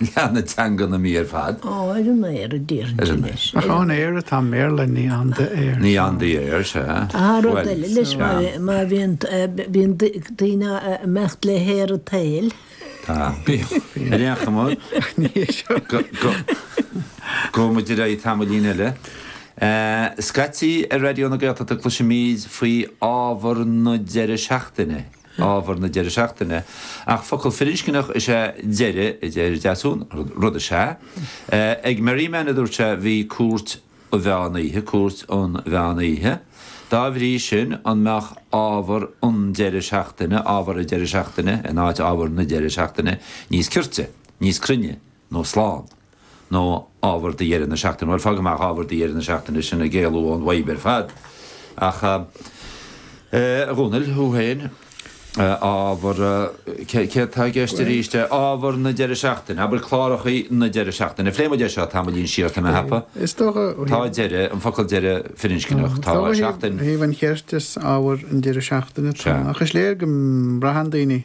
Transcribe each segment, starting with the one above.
Leath na teanga na Mí ar fad. Ó, ar an aer a déarfainn sin leis. Ach on air atá i mBéarla, ní on the air. Ní on the air, sea. Aha, rud eile leis, má bhíonn daoine a' imeacht le haer an tsaoil. Tá, bíonn. Ar aon chuma, gabhfaidh muid ar aghaidh tamaillín eile. Scaití ar Raidió na Gaeltachta cloisimid faoi ábhar na deireadh seachtaine. ábhar na deireadh seachtaine, ach focal firinscneach is ea deireadh, a deir Deasún, rud is ea. Ag Merriman, a dúirt sé, bhí cúirt an mheán oíche, cúirt an mheán oíche. Dá bhrí sin, an mbeadh ábhar an deireadh seachtaine, ábhar an deireadh seachtaine in áit ábhar na deireadh seachtaine níos cirte, níos cruinne? nó slán. Nó ábhar do dheireadh na seachtaine. Bhuel, fág amach ábhar do dheireadh na seachtaine, sin ag éalú ón bhfadhb ar fad. Ach, a Dhomhnaill, thú féin, ábhar, céard tá i gceist arís é? Ábhar na deireadh seachtaine, abair cláracha na deireadh seachtaine. Phléigh muid é seo tamaillín siar, tá mé a cheapadh. Is dócha. Tá deireadh, an focal deireadh firinscneach, tá seachtain. Ó thaobh an chirt is ábhar an deireadh seachtaine atá ann. Ach is léir go mbraitheann daoine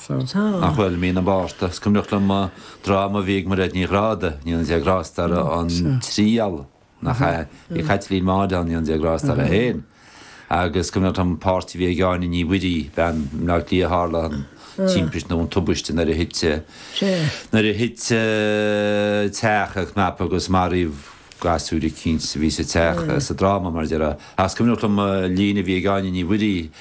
Ach bhuel, Mí na Márta is cuimhneach liom an dráma a bhí ag Mairéad Ní Ghráda, go ndéana Dé grásta uirthi, An Triail, nach ea? Bhí Caitlín Maude ann, go ndéana Dé grásta uirthi féin. Agus is cuimhneach liom an páirt a bhí ag Áine Ní Mhuirí, bean i mBleá Cliath, tharla an timpist nó an tubaiste nuair a thit, nuair a thit teach ina chnap agus maraíodh gasúir eicínt a bhí sa teach, sa dráma, mar dhea. Ach is cuimhneach liom líne a bhí ag Áine Ní Mhuirí.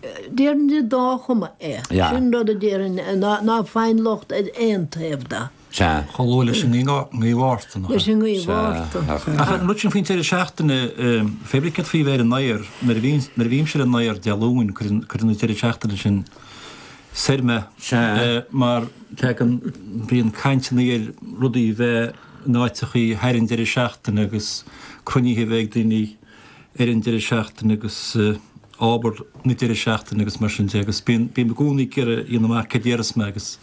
Déarfainn de dá chuma é. Sin rud a déarfainn, ná faigheann locht ar aon taobh de. Chomh luath leis an ngaoth Mhárta, nach é? Ach an rud sin faoin deireadh seachtaine, pébrí céard faoi bheith ar an aer? Nuair a bhímse ar an aer Dé Luain, cuireann an deireadh seachtaine sin soir mé mar bíonn caint ann ar rudaí a bheith in áiteachaí thar an deireadh seachtaine agus cruinnithe a bheith ag daoine. ar an deireadh seachtaine agus obair na deireadh seachtaine agus mar sin de agus bím, bím i gcónaí ag iarraidh a dhéanamh amach céard a dhéarfas mé agus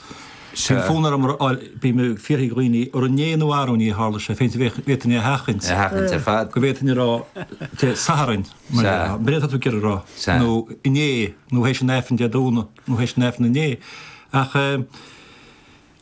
bíonn fonn orm a fháil, bím ag fiafraí de dhaoine, ar inné nó arú-inné a tharla sé, féachaint an bhféadfainn é a sheachaint, a sheachaint ar fad, go bhféadfainn a rá Dé Sathairn, mar a mhalairt atá tú ag iarraidh a rá, nó inné nó théis an Aifrinn Dé Domhnaigh nó théis an Aifrinn inné ach eh,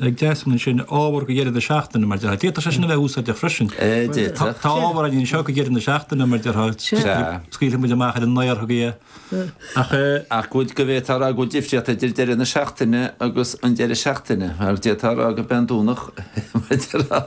ag Deasún ansin ábhar go deireadh na seachtaine, mar déarfá. D'fhéadfadh sé sin a bheith úsáideach freisin. D'fhéadfadh. Tá ábhar againn anseo go deireadh na seachtaine, mar déarfá, scaoilfidh muid amach ar an ngaorthadh é, ach. Ach go bhféadfá a rá go bhfuil difríocht idir deireadh na seachtaine agus an deireadh seachtaine, mar d'fhéadfá a rá gurb é an Domhnach, mar déarfá,